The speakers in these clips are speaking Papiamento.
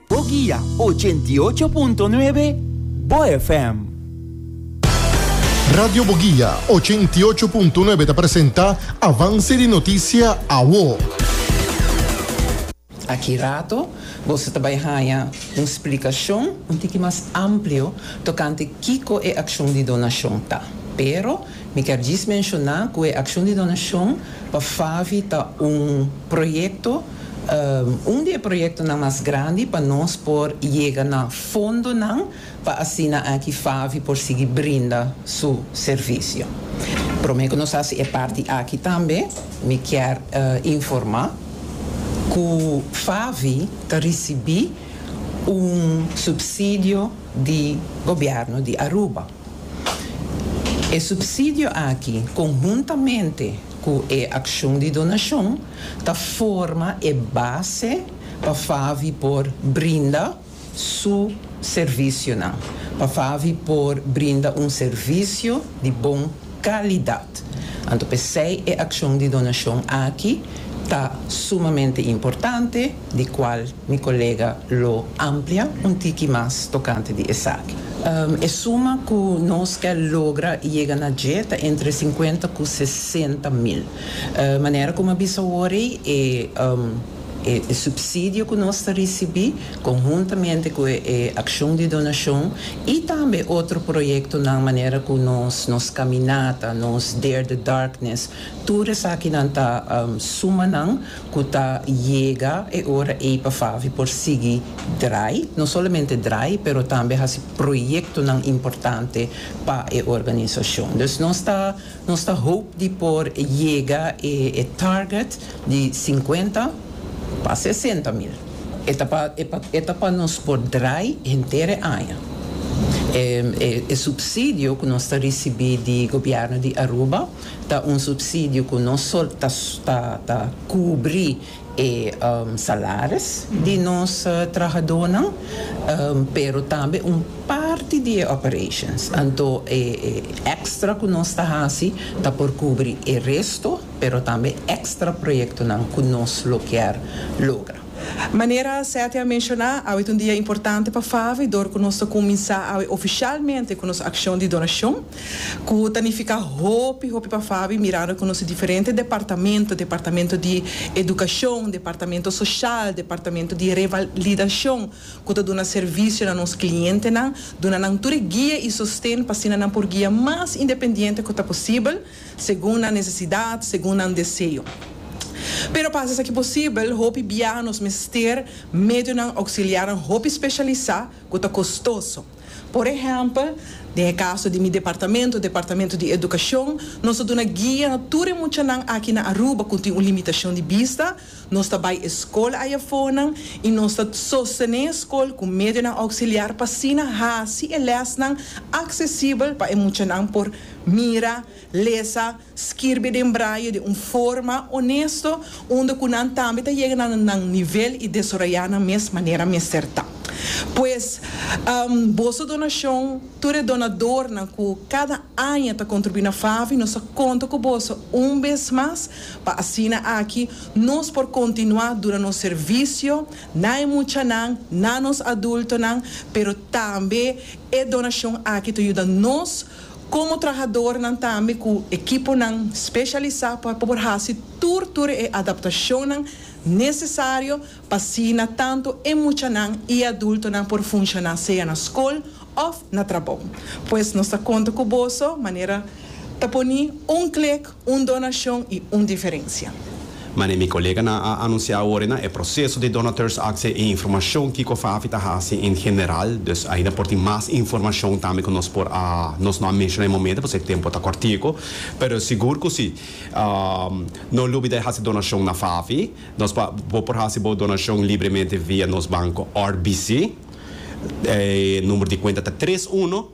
Boguia 88.9, Bo FM. Radio Boguia 88.9 ta presenta Avance di Noticia Awo. Aki rato boso ta bai haña un splicacion un tiki mas amplio tocante kico e accion di donacion ta. Pero mi kier djis menciona cu e accion di donacion pa Favi ta un proyecto, Un di e proyektonan mas grandi pa nos por yega na fondonan pa asina aki FAVI por sigui brinda su servisio. Promé ku nos hasi e parti aki tambe mi kier informá ku FAVI ta risibí un supsidio di gobièrnu di Aruba. E supsidio aki konhuntamente ku e akshon di donashon, ta forma e base pa Favi por brinda su servisionan, pa Favi por brinda un servisio di bon kalidat. Anto p'esei e akshon di donashon aki ta sumamente importante, di kual mi kolega lo amplia un tiki mas tokante di esaki. E suma ku nos ke logra yega na dje ta entre sinkuenta ku sesenta mil. Manera ku mi a bisa awor ei, e e supsidio ku nos ta risibí, konhuntamente ku e e akshon di donashon i tambe otro proyektonan manera ku nos nos kaminata, nos Dare the Darkness, tur esakinan ta sumanan ku ta yega e ora ei pa Favi por sigui drai, no solamente drai, pero tambe hasi proyektonan importante pa e organisashon. Dus nos ta. Nos ta hoop di por yega e e target di cincuenta pa sesenta mil. E ta pa e pa e ta pa nos por draai henter e aña. E e e subsidio cu nos ta ricibi di Gobierno di Aruba ta un subsidio cu no so ta ta cubri e salaris di nos trahadonan, pero tambe un parti di e operations. Anto e extra cu nos ta haci ta por cubri e resto, pero tambe extra proyectonan cu nos lo kier logra. Manera Seti a menciona, awe ta un dia importante pa Favi dor cu nos ta cuminsa awe oficialmente cu nos accion di donacion. Ku ta nifiká hopi hopi pa Fabi mirando ku nos tin diferente departamento, departamento di edukashon, departamento soshal, departamento di revalidashon ku ta duna servisio na nos klientenan, duna nan tur e guia i sosten pa asina nan por guia mas independiente ku ta posibel, segun nan nesesidat, segun nan deseo. Pero pa hasi esaki posibel, hopi biaha nos mester medionan ouksiliarnan hopi speshalisá ku ta kostoso. Por ehèmpel, den e kaso di mi departamento, Departamento di Edukashon, nos a duna guia na tur e muchanan aki na Aruba ku tin un limitashon di bista, nos ta bai e skol ayafonan i nos ta sostené e skol ku medionan ouksiliar pa asina hasi e lèsnan aksesibel pa e muchanan por mira, lesa, Skirbi den braye di un forma onesto unda ku nan tambe ta yega na nan nivel i desaroyá nan mes manera mester ta. Pues, boso donashon, tur e donadornan ku kada aña ta kontribuí na FAVI, nos ta konta ku boso un bes mas pa asina aki nos por kontinuá duna nos servisio na e muchanan, na nos adultonan, pero tambe e donashon aki ta yuda nos. Komo trahadornan tambe ku ekiponan speshalisá pa por hasi tur tur e adaptashonnan nesesario pa asina tantu e muchanan i adultonan por funshoná sea na skol òf na trabou. Pues nos ta konta ku boso manera ta poni un klik Un donashon i un diferensia. Manera mi koleganan a anunsiá awor na e proseso di donateurs akse i informashon kiko Fafi ta hasi en general, dus ainda por tin mas informashon tambe ku nos por a nos no a menshoná e momento pasobra e tempu ta kòrtiku, pero sigur ku si. No lubida e hasi donashon na Fafi. Nos por bo por hasi bo donashon libremente via nos banko RBC. E number di kuenta ta tres uno.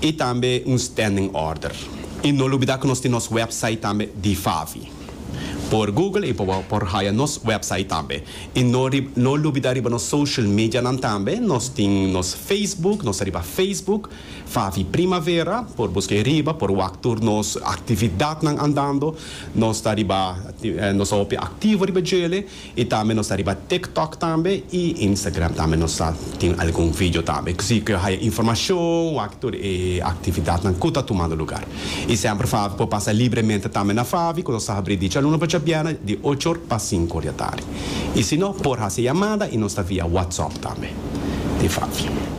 y tambe un standing order. Y no lubida cu nos tin nos website tambe di Favi. Por Google y por haya nos website tambe. Y no no lubida riba nos social medianan tambe, nos tin nos Facebook, nos ta riba Facebook, Favi Primavera, por busca ahi riba, por wak tur nos actividadnan andando, nos ta riba, nos ta hopi activo riba djele. Y tambe nos ta riba TikTok tambe y Instagram tambe nos ta tin algun video tambe. Cosi cu yo haya informacion wak tur e actividadnan cu ta tumando lugar. Y semper Favi por pasa libremente tambe na Favi cu nos ta habri di djalunes pa djabièrnè di ocho or pa sinku or di atardi. Y si no por haci yamada y nos ta via WhatsApp tambe di Favi.